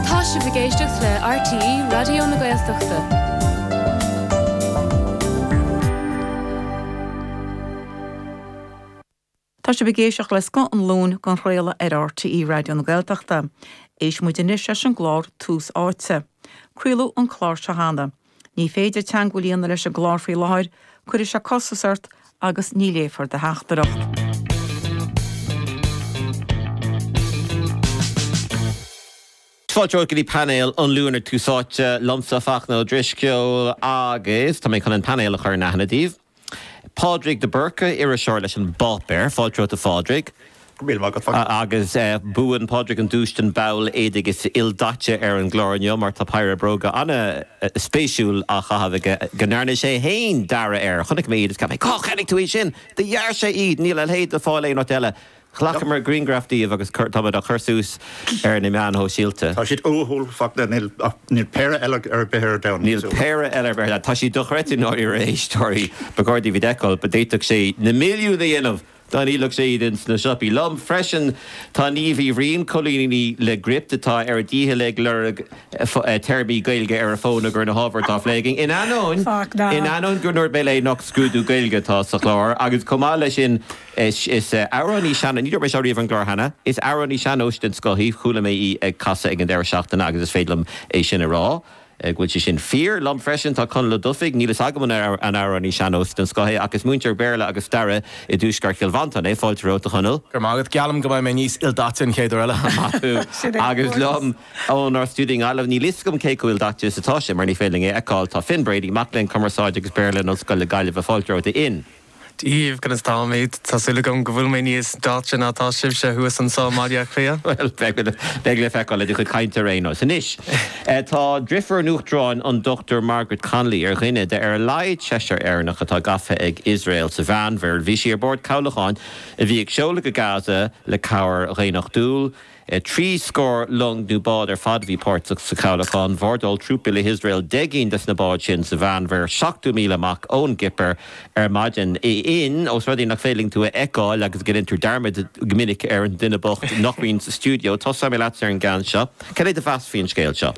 Tá sibh ag éisteacht le RTÉ Raidió na Gaeltachta. Tá sibh ag éisteacht le scoth an Luain á chraoladh ar RTÉ Raidió na Gaeltachta. Éistfidh muid anois leis an gclár Tús Áite. Craoladh an clár seo cheana. Ní féidir teagmháil a dhéanamh leis an gclár faoi láthair, cuirfidh sé costas ort agus ní léifear do theachtaireacht. Fáilte romhat go dtí painéal an Luain ar Tús Áite liomsa, Fachtna Ó Drisceoil, agus tá mé chun an painéal a chur in aithne daoibh. Pádraig de Búrca, iriseoir leis an bpáipéar. Fáilte romhat, a Phádraig. Go raibh míle maith agat. Agus buann Pádraig an duais don bhall éadaigh is ildaite ar an gclár inniu mar tá péire bróga an-spéisiúil á chaitheamh aige go ndearna sé fhéin dearadh orthu. Chonaic mé iad is ceap mé, Cár cheannaigh tú iad sin? Do dhear sé iad! Níl a leithéid le fáil aon áit eile. Ghlacamar grianghraif díobh agus táimid á chur suas ar na meáin shóisialta. Tá siad uathúil, a Fhachtna, níl péire eile ar bith ar domhan níos uathúla. Tá siad dochreidte dáiríre a éisteoirí ba chóir daoibh iad a fheiceáil, ba d'fhéadfadh sé na milliúin a dhéanamh dá ndíolfadh sé iad ins na siopaí. Liom freisin tá Niamh Uí Bhriain, colúnaí le Gript atá ar a dícheall ag lorg téarmaí Gaeilge ar a fón i gcomhair na n-ábhar atá á phlé againn. In ainneoin gur ndúirt mé léi nach scrúdú Gaeilge atá sa chlár agus chomh maith leis sin, Is amhránaí sean-nóis, ní dúirt mé seo riamh ar an gclár cheana, is amhránaí sean-nóis den scoth í. Chuala mé í ag casadh ag an deireadh seachtaine agus is féidir liom é sin a rá. go bhfuil sé sin fíor. Liom freisin tá Conall Ó Dufaigh, níl fhios agam an an amhránaí sean-nóis den scoth é ach is múinteoir Béarla agus Staire i dtuaisceart Chill Mhantáin é. Fáilte romhat, a Chonaill. Go raibh maith agat. Geallaim go mbeidh mé níos ildaite an chéad uair eile. Maith thú. Agus liom ónár stiúideo i nGaillimh, níl fhios agam cé chomh ildaite is atá sé mar ní féidir linn é a fheiceáil, tá Finn Brady, mac léinn Cumarsáide agus Béarla in Ollscoil na Gaillimhe. Fáilte romhat, a Fhinn. daoibh, conas táimid? Tá súil agam go bhfuil mé níos ildaite ná atá sibhse thuas ansin i mBaile Átha Cliath. Bhuel, beidh le feiceáil, ó do chuid cainte ar aon nós. Anois, tá driofúr an Uachtaráin, an Dr Margaret Connolly, ar dhuine de ar a laghad seisear Éireannach atá gafa ag Iosrael sa Mheánmhuir. Bhí sí ar bord cabhlacháin a bhí ag seoladh go Gaza le cabhair dhaonnachtúil. Trí scór long nó bád ar fad a bhí páirteach sa chabhlachán. Bhordáil trúpaí Iosrael deich gcinn de na báid sin sa Mheánmhuir, seachtó míle amach ón gCipir ar maidin. Finn, ós rud é nach féidir linn tú a fheiceáil agus go ndéantar dearmad go minic ar an duine bocht nach mbíonn sa stiúideo, tosóidh mé leatsa ar an gceann seo. Céard é do mheas faoin scéal seo?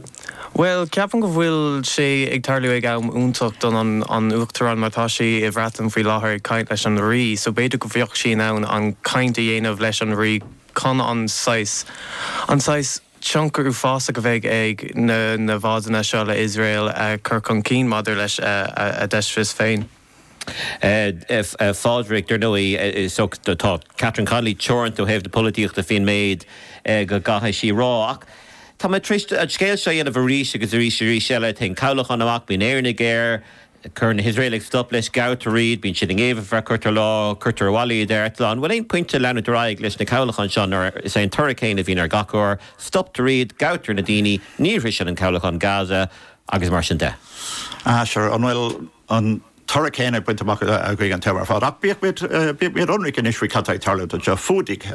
Bhuel, ceapaim go bhfuil sé ag tarlú ag am iontach don, an, Uachtarán mar tá sí i bhFreatain faoi láthair ag caint leis an Rí so b'fhéidir go bheadh sí in ann an caint a dhéanamh leis an Rí. Chun an saghas an saghas tionchar uafásach a bheidh ag na na bádanna seo le Iosrael a chur chun cinn maidir leis an deistreas féin. A Phádraig, Dar ndóigh, is tá Catherine Connolly teoranta ó thaobh na polaitíochta faoin méid a gcaithfidh sí a rá. Ach tá mé tar éis an scéal seo a dhéanamh arís agus arís arís eile. Téann cabhlachán amach, bíonn Éireannaigh air, Cuireann na hIosraelaigh stop leis, gabhtar iad, bíonn siad i ngéibheann, cuirtear lá, cuirtear abhaile iad ar eitleán. An bhfuil aon pointe le leanúint ar aghaidh leis na cabhlacháin seo nuair is é an toradh céanna a bhíonn ar gach uair, stoptar iad, gabhtar na daoine, ní shroiseann an cabhlachán Gaza, agus mar sin de? Ah, sure, an bhfuil an toradh céanna bainte amach againn an t-am ar fad? Ach bíodh muid ionraic anois faoi cad tá ag tarlú anseo. Fuadaigh,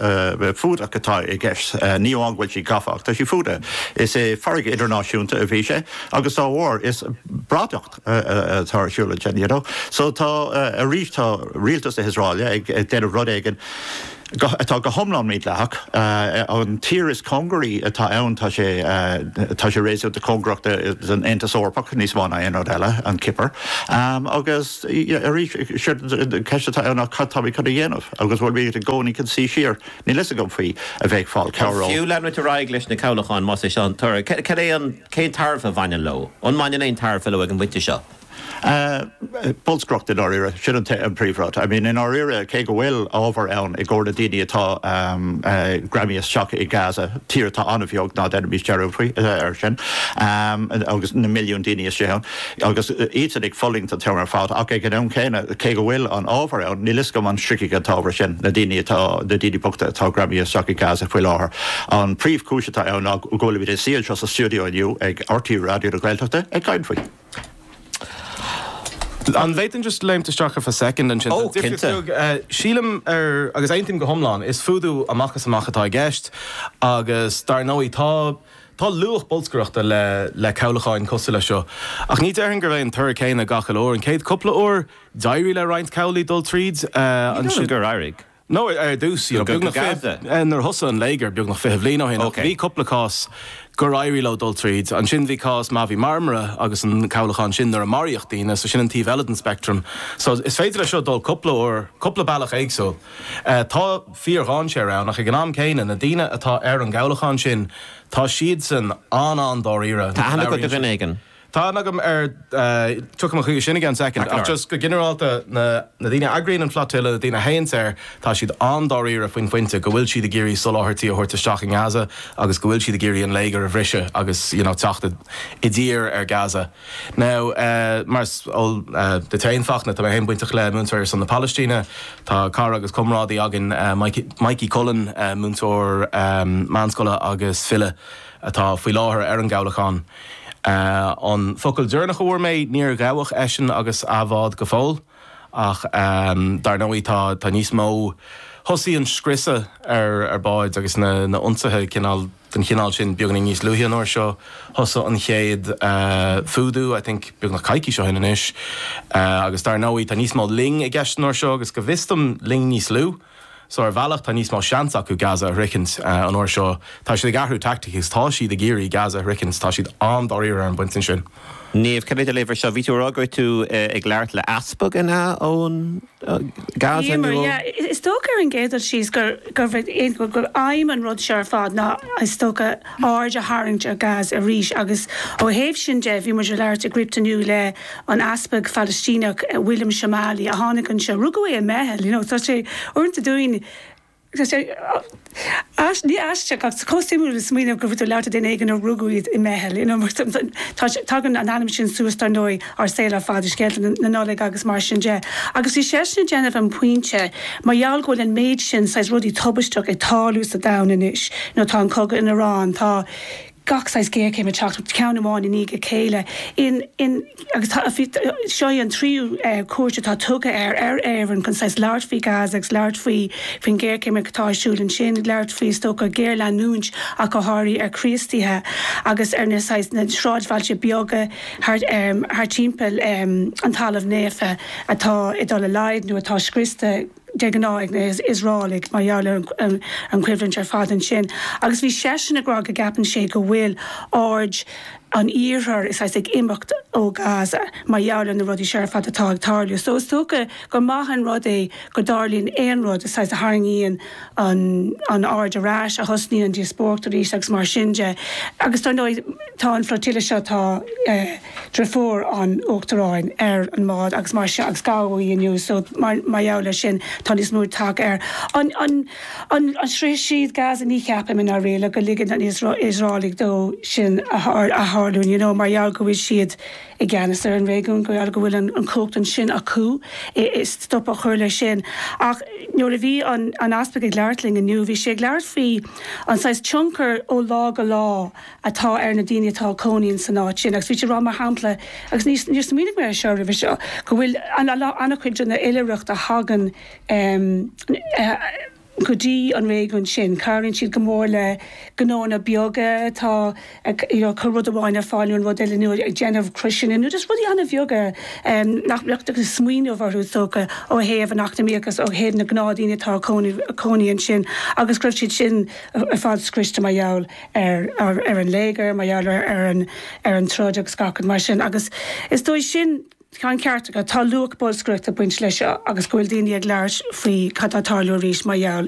fuadach atá i gceist, ní amháin go bhfuil siad gafa ach tá siad fuadaithe. Is i farraige idirnáisiúnta a bhí sé. agus dá bhrí sin is bradacht atá ar siúl ansin, you know. So tá, arís, tá rialtas na hIosraeile ag déanamh rud éigin atá go hiomlán mídleathach. An tír is cóngaraí atá ann, tá sé, tá sé réasúnta cóngarach don Aontas Eorpach níos mó ná aon rud eile, an Chipir. Agus, arís, séard, an cheist atá ann ná cad táimid chun a dhéanamh agus bhfuil muid i gcónaí chun suí siar? Níl a fhios agam faoi a bheith ag fáil cabhair ó. Fiú leanúint ar aghaidh leis na cabhlacháin, más é seo an toradh, cad é an. Cén tairbhe a bhaineann leo? An mbaineann aon tairbhe leo ag an bpointe seo? Bolscaireacht, i ndáiríre. Sin an príomhrud. I mean, i ndáiríre, cé go bhfuil ábhar ann i gcomhair na daoine atá greamaithe isteach i Gaza, tír atá an-bheag, ná déanaimis dearúd faoi, air sin, agus na milliúin daoine istigh ann, agus iadsan ag fulaingt an t-am ar fad, ach ag an am céanna, cé go bhfuil an t-ábhar ann, níl 'fhios agam an sroichfidh an t-ábhar sin na daoine atá, na daoine bochta atá greamaithe isteach i Gaza faoi láthair. An príomhchúis atá ann ná go bhfuilimid ag suí anseo sa stiúideo inniu ag RTÉ Raidió na Gaeltachta ag caint faoi. An bhféadfainn just léimt isteach ar feadh soicind ansin? Oh, cinnte. Sílim ar, agus aontaím go hiomlán, is fuadú amach is amach atá i gceist agus dar ndóigh tá, Tá luach bolscaireachta le cabhlacháin cosúil leis seo, ach ní déarfainn gurb é an toradh céanna gach uile uair. An chéad chúpla uair, d'éirigh le roinnt cabhlaigh dul tríd. Ní dóigh liom gur éirigh. Nó ar dtús, you know, nuair a thosaigh an léigear beagnach fiche bliain ó shin, bhí cúpla cás gur éirigh leo dul tríd. Ansin bhí cás Mavi Marmara agus an cabhlachán sin nuair a maraíodh daoine, so sin an taobh eile den speictream. So is féidir leis seo dul cúpla uair, cúpla bealach éagsúil. Tá fíordhainséar ann, ach ag an am céanna, na daoine atá ar an gcabhlachán sin, tá siadsan an-an-dáiríre. Tá aithne agat ar dhuine éigin? Tá aithne agam ar, tiocfaidh mé chuige sin i gceann soicind, ach just go ginearálta, na daoine a eagraíonn an flotilla, na daoine a théanns air, tá siad an-dáiríre faoin phointe go bhfuil siad ag iarraidh soláthairtí a thabhairt isteach i nGaza agus go bhfuil siad ag iarraidh an léigear a bhriseadh agus, you know, teacht i dtír ar Gaza. Nó, mar is eol duit féin, Fachtna, tá mé féin bainteach le múinteoirí ar son na Palaistíne. Tá cara agus comrádaí againn, Mikey Cullen, múinteoir meánscoile agus file, atá faoi láthair ar an gcabhlachán. An focal deireanach a fuair mé, níor ghabhadh eisean agus a bhád go fóill. Ach dar ndóigh tá níos mó. Thosaigh an scriosadh ar báid agus na hionsaithe cineál den chineál sin beagáinín níos luaithe an uair seo. Thosaigh an chéad fuadú, I think, beagnach coicís ó shin anois. Agus dar ndóigh tá níos mó loing i gceist an uair seo agus go bhfios dom loing níos lú. So ar bhealach tá níos mó seans acu Gaza a shroichint an uair seo. Tá siad ag athrú tactics agus tá siad ag iarraidh Gaza a shroichint. Tá siad an-dáiríre ar an bpointe sin. Niamh, cad é do léamh ar seo? Bhí tú ag rá go raibh tú ag labhairt le easpag, an ea, ó Gaza? Em, yeah. Is dócha ar an gcéad dul síos gur aidhm an rud seo ar fad ná is dócha aird a tharraingt ar Gaza arís agus ó thaobh sin de bhí muid ag labhairt i Gript inniu le an easpag Phalaistíneach William Shomali a tháinig anseo. Rugadh é i mBeithil. You know, tá sé, uaireanta dúinn, tá sé, ní aisteach ach chomh suimiúil le smaoineamh go bhfuil tú ag labhairt le duine éigin a rugadh é i mBeithil, you know, mar tá sé, tagann an ainm sin suas, dar ndóigh, ár saol ar fad, i scéalta na Nollag agus mar sin de. Agus bhí seisean ag déanamh an pointe, mar gheall go bhfuil an méid sin saghas rudaí tubaisteach ag tarlú sa domhan anois, you know, tá an cogadh in Iran, tá, gach saghas géarchéim ag teacht, ceann amháin i ndiaidh a chéile, in, in, agus tá, seo í an tríú cuairt atá tugtha ar, ar Éirinn chun saghas labhairt faoi Gaza agus labhairt faoi, faoin ghéarchéim atá ar siúl ansin, labhairt faoi, is dócha, géarleanúint ach go háirithe ar Chríostaithe agus ar na saghas, na sráidbhailte beaga thart, thart timpeall an Talaimh Naofa atá ag dul i laghad nó atá scriosta. de ghnáth ag na hIosraelaigh mar gheall ar an choimhlint ar fad ansin, agus bhí seisean ag rá go gceapann sé go bhfuil aird an Iarthair, saghas, ag imeacht ó Ghaza mar gheall ar na rudaí seo ar fad atá ag tarlú. So, is dócha gur maith an rud é go dtarlaíonn aon rud, saghas, a tharraingíonn an aird ar ais, a thosnaíonn an díospóireacht arís agus mar sin de. Agus, dar ndóigh, tá an flotilla seo, tá, deirfiúr an Uachtaráin ar an mbád agus mar seo agus gabhadh í inniu so mar gheall ar sin tá níos mó aird tagtha ar an an an an sroichfidh siad Gaza ní cheapaim i ndáiríre go ligeann an Iosraelaigh dó sin a a tharlú you know mar gheall go bhfuil siad i gceannas ar an réigiún go bhfuil go bhfuil an an cumhacht ansin acu i i stop a chur leis sin ach nuair a bhí an an Easpag ag labhairt linn inniu bhí sé ag labhairt faoi an saghas tionchar ó lá go lá atá ar na daoine atá ag cónaí in san áit sin agus bhí siad ag rá mar shampla, agus níor, níor smaoinigh mé air seo roimhe seo, go bhfuil an-chuid de na hoilithreachtaí a thagann go dtí an réigiún sin, cabhraíonn siad go mór le gnónna beaga atá ag you know, cur rud amháin ar fáil nó an rud eile nó ag déanamh croiseanna nó just rudaí an-bheaga nach mbeifeá ag smaoineamh orthu is dócha ó thaobh an eacnamaíoch agus ó thaobh na gnáthdhaoine atá ag cónaí ansin agus go raibh siad sin ar fad scriosta mar gheall ar an léigear, mar gheall ar an troid agus gach rud mar sin agus is dóigh sin, tá an ceart agat, tá luach bolscaireachta ag baint leis seo agus go bhfuil daoine ag labhairt faoi cad tá ag tarlú arís mar gheall